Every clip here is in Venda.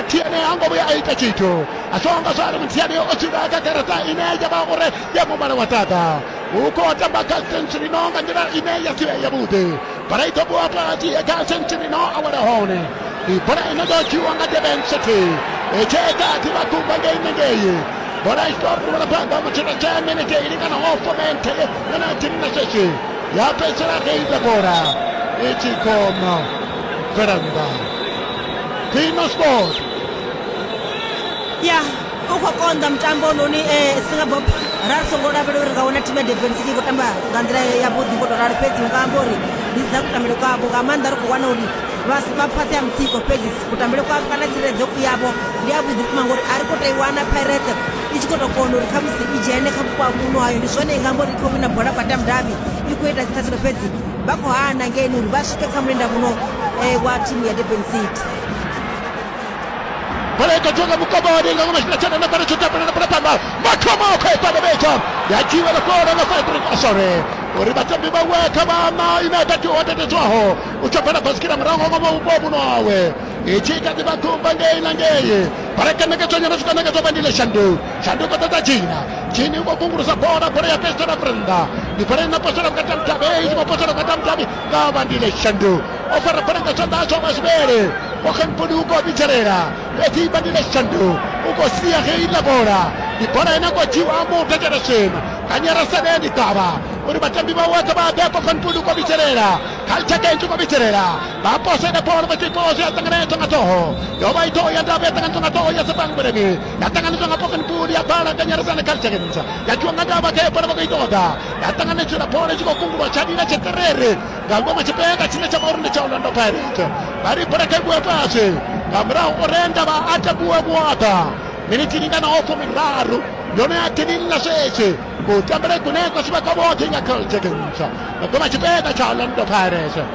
tiene ango vhuya a ita tshithu a zwo nga zwari muthiani o dzula kha garaṱa ine ya vha uri ya mumala wa ṱaḓa hu khou tamba kha century no nga nḓila ine ya si vhe yavhuḓi bola i ḓo vhuwa fhasi kha century no a wela hone ndi bola ine ḓo dzhiwa nga deben city etsheka a ḓivha kumba ngei nengei bola i ḓo ruvhela phanḓa mutshena tshe minete i lingana ho fomente yona tini na sweswi ya fhedzisela reida bola i tshi khou bvela nnḓa Dino Sport ya u khou konḓa mutambo noni um eh, singapop ra ri songo lavhela uri nga wana thimu ya defense i khou tamba nga nḓila yavhuḓi ngo tou ralo fhedzi nga amba uri ndi dza kutambele kwavho nga maanḓa ri khou wana uri vha fhasi ha mutsiko fhedzi kutambele kwavho kana tsireledzo yavho ndi yavhuḓi vhukuma ngori a ri khou tou i wana pirate i tshi khou tou kona uri khamusi i dzhene kha vhupo ha muno hayo ndi zwone i nga amba uri i khou wina bola kwa tamdavi i khou ita dziṱhathelo fhedzi vha khou hana ngeni uri vha swike kha mulenda muno eh, wa thimu ya durban city bola i khou dzhiwa nga mukomba wa linga ngono tshifhinga tshena nafhano tsho tapelela bola phanḓa mathomo o khou i fana vhetsha ya dzhiwa na fholo nga fadrik osore uri vhatambi vhawe kha vhana ine a tatiwa tatedzwaho u tsho bvela basikira murahu nga ngomu vhupo muno wawe i tshi kha ḓi vha khumba ngei na ngei bola i kanekedzwa nyana zwi kanekedzwa vha ndile shandu shanduko dza dza dzhina dzhini u khou kungulusa bola bola ya pestela vurenda ndi bola ina postela vhukati ha mudavhi i tshi khou postela vhukati ha mudavhi nga vhandile shandu o fara bola nga tshanḓa tsho masibele okanponi u khou vhidzelela fhedzi vhandile shandu u khou sia ge iḽa bola ndi bola ine khou dzhiwa muthu dzhereshen kanyera saleni ḓavha uri vhatambi vha woṱhe vha ḓe okanponi u khou vhidzelela khaltshake i tshi khou vhidzelela vha posele bola vha tshi khou zwi a ṱanganedzwa nga ṱhoho yo vha i ṱhoho ya ndavhi ya ṱanganedzwa nga ṱhoho ya sepangweleni yatanganedzwa nga poken pool ya bala nga nyaradzo ane kalichekenza yakiwa nga ndava khayo bola vha khou i ṱoḓa yatanganedzwela bola itshi khou kungulwa tsha lila tsheterere nga ngoma tshipeka tshine tsha vha uri ndi tsha orlando pirate vha ri bola kha i vhuwe fhasi nga murahu orenda vha a takuwe vhuaḓa miniti lingana ofo miraru yone ya tinilla sweswi kutambela ikunekwa swi va ka voxe nga kalichekenza nga ngoma tshipeka tsha orlando pirate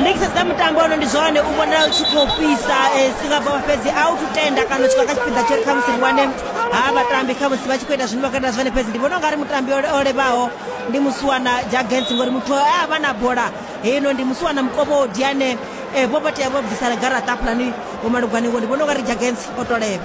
ndi tshi sedza mutambo ono ndi zwone u vhonala u tshi khou fhisa singapore fhedzi a u tutenda kana u tshi kha tshipiḓa tsho ri khamusi ri wane ha vhatambi khamusi vha tshi khou ita zwine vha khou ita zwone fhedzi ndi vhona u nga ri mutambi o levaho ndi musuwana jagens ngori muthu e a vha na bola heino ndi musuwana mukovho o diane um vho vha tea vho bvisana garaṱa hafhaḽani vhomalugwane ngo ndi vhona u nga ri jagens o to levha